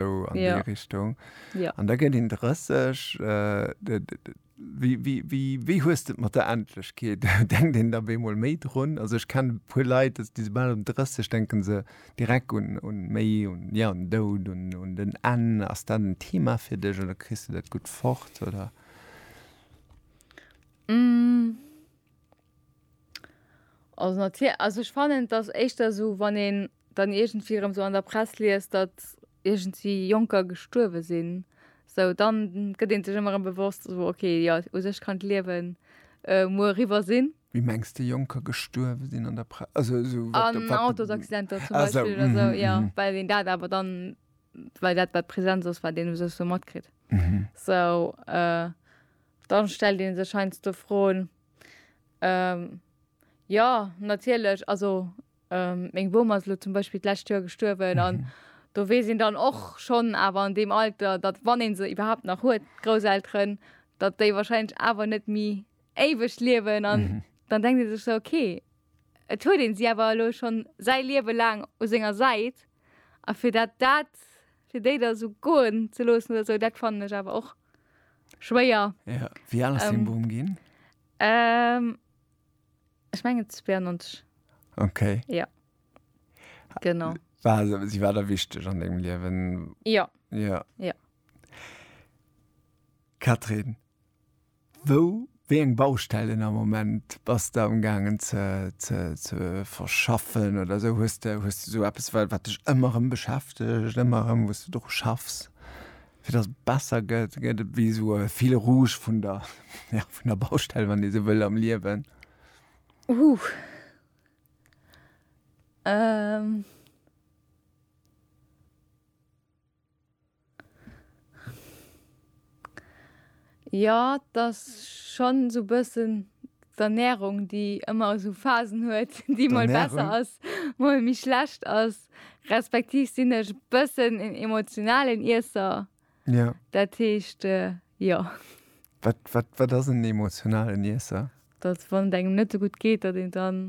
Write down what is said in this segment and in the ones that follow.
sou an ja. déi Richtung. Ja. An da gëtt een 30. Äh, Wéi, wéi, wéi, wéi hues du mat der Endlechkeet? Denkt een da bemol méi drun? Also ech kenne puer Leit, dass die sobald um 30 denken se direkt un, un méi un ja un Doud un, un den Enn. Ass dat en Thema fir dech oder kriss du dat gutt fort oder? Mm. Also natierlech, also ech fannen et ass éischter esou, wann een dann iergendwéi erëm esou an der Press liest, datt iergendwéi Jonker gestuerwe sinn, esou dann gëtt ee sech ëmmer erëm bewosst, esou okay, jo u sech kann d'Liewen muer eriwwer sinn. Wéi mengs de Jonker gestuerwe sinn an der Press? Also esou wat, wat. An Autosaccidenter zum Beispill oder esou, jo, well een dat awer dann, well dat wat Präsenz ass, wat een u sech esou matkritt. Esou dann stellt ee sech heiansdo Froen, Ähm, jo, natierlech. Also, meng Bom ass elo zum Beispill d'lescht Joer gestuerwen. An do weess een dann och schonn awer an deem Alter, datt, wann ee se iwwerhaapt nach huet, d'Grousselteren, datt déi warscheinlech awer net méi éiweg liewen. An dann denkt ee sech sou, okay, et huet ee si awer elo schonn säi Liewe laang u senger Säit. A fir dat dat fir déi da sou goen ze loossen oder sou, dat fannen ech awer och schwéier. Ja, wéi al ass dee Ähm. Boom ginn? Ähm, ech mengen 92, Okay. genau. War, se- si war da wichteg an dengem Liewen? Ja, Ja. Ja. Catherine, Wou, wéi eng Baustellen am Moment bass de am gaangen ze verschaffen oder esou? Hues de esou eppes, wat dech ëmmer erëm beschäftegt, ëmmer erëm, wou s de dru schaffs, fir datt et besser gëtt? Gëtt et ewéi esou e Fil rouge vun der Baustell, wann ee esou wëll, am Liewen? Jo, t'ass schonn esou e bëssen d'Ernärung, déi ëmmer esou Phasen huet, déi mol besser ass, mol méi schlecht ass. Respektiv sinn ech e bëssen en emotionalen Iesser. Jo. Dat heescht, jo. Wat, wat, wat ass en emotionalen Iesser? Datt wann et engem net esou gutt geet, datt een dann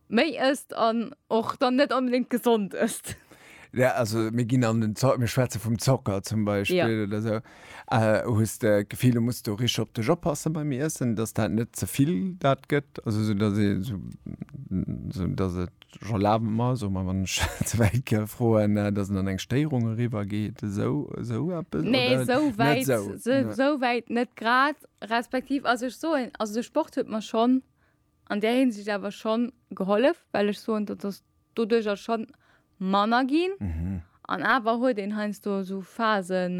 Méi ësst an och dann net onbedéngt gesond ësst. Ja, also mir ginn an den Zo-, mir schwätze vum Zocker zum Beispill. Jo. Oder esou. Hues de d'Gefill, du muss do richteg op dech oppassen beim Iessen, dass dat net ze vill dat gëtt? Also esou, dass ee sou, sou dass et, ech erlabe mer, soe mer, wann ech ze wäit ka froen, dass en an eng Stéierung eriwwer geet, esou, esou eppes? Oder Nee, esou net wäit, esou? esou wäit net grad. Respektiv, also ech soen, also de Sport huet mer schonn. an där Hinsicht awer schonn gehollef, well ech soen, dat ass doduerjer schonn manner ginn. An awer huet een heiansdo esou Phasen,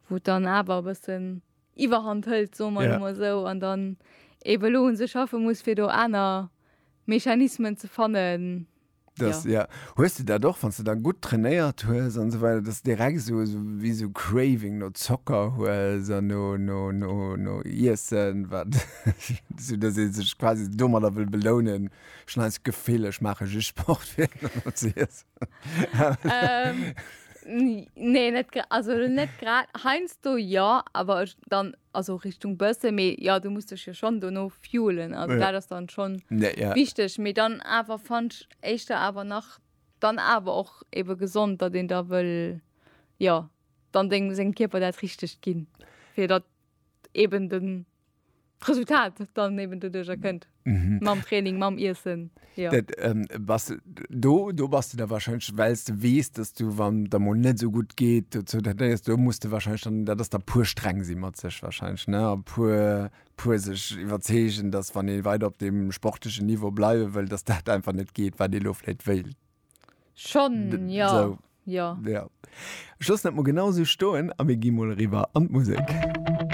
wou et dann awer e bëssen Iwwerhand hëlt, soe mer emol esou, an dann eebe elo u sech schaffe muss, fir do aner Mechanismen ze fannen, Das, ja. ja. Hues du dat och, wann du dann gut trainéiert hues an so weiter, dass direkt so, so wie so Craving no Zocker hues an no, no, no, no Iessen, wat so, dass se sech quasi dummer da will belounen. Schon als Gefill, ich mache just Sport fir zu iessen. ähm, nee, net also net grad heinz do ja, aber dann also Richtung Bësse méi ja du muss dech jo schonn dono fuelen also dat ass dann schonn wichteg méi dann awer fandsch éischter awer nach dann awer och ebe gesond dat een da wëll ja dann deng sengem Kierper dat richtegt ginn fir dat eben den Resultat dann eben doduercher kënnt. Mhm. Mam Training, mam Iessen. Ja. Dat, ähm, was, do, do bas du da wahrscheinlech, wells du wees, dass du wann der mol net so gut geet, du zu dat nees, do musst du wahrscheinlech dann, dat ass da puer streng si mat sech wahrscheinlech, ne? A puer puer sech iwwerzeegen, dass wann ee weider op dem sportlechen Niveau bleiwe wëll, dass dat einfach net geet, wat ee lo vläit wéilt. Schon, ja. So. Ja. Ja. Ech loossen dat mol genau sou stoen a mir gi mol eriwwer an d'Musek.